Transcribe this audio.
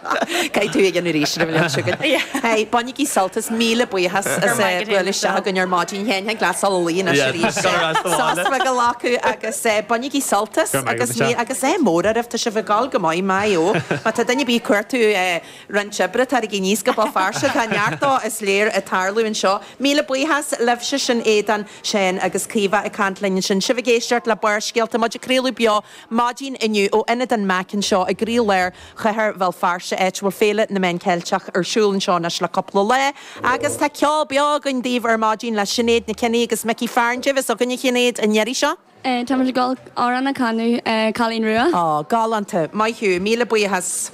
Caithfidh tú é a dhéanamh arís, raibh liom chugat. Hey, bainigí sult as, míle buíochas as bualadh isteach againn ar maidin féin, thig leat gabháil a luí anois arís. Sos a ghlacadh agus bainigí sult as agus ádh mór oraibh, tá sibh ag dul go maith, maith eo. Má tá duine ar bith ag cuartú roinnt oibre, taraigí aníos go Béal Feirste, tá neart is léir ag tarlú anseo. Míle buíochas libhse, sin Aodán, Séan agus Caoimhe ag caint linn ansin, sibh ag éisteacht le Barrscéalta, muid ag craoladh beo Maidin inniu, ó Ionad an MAC anseo i gcroílár chathair Bhéal Feirste, áit a bhfuil Féile na Meán Ceilteach ar siúl anseo anois le cúpla lá, agus tá ceol beo againn daoibh ar maidin le Sinéad Nic Cionnaith agus Mickey Fearon. Cad é a bheas againn, a Shinéad, an iarraidh seo. Tá muid ag dul amhrán a chanadh, Cailín Rua. Aww, galánta. Maith thú. Míle buíochas.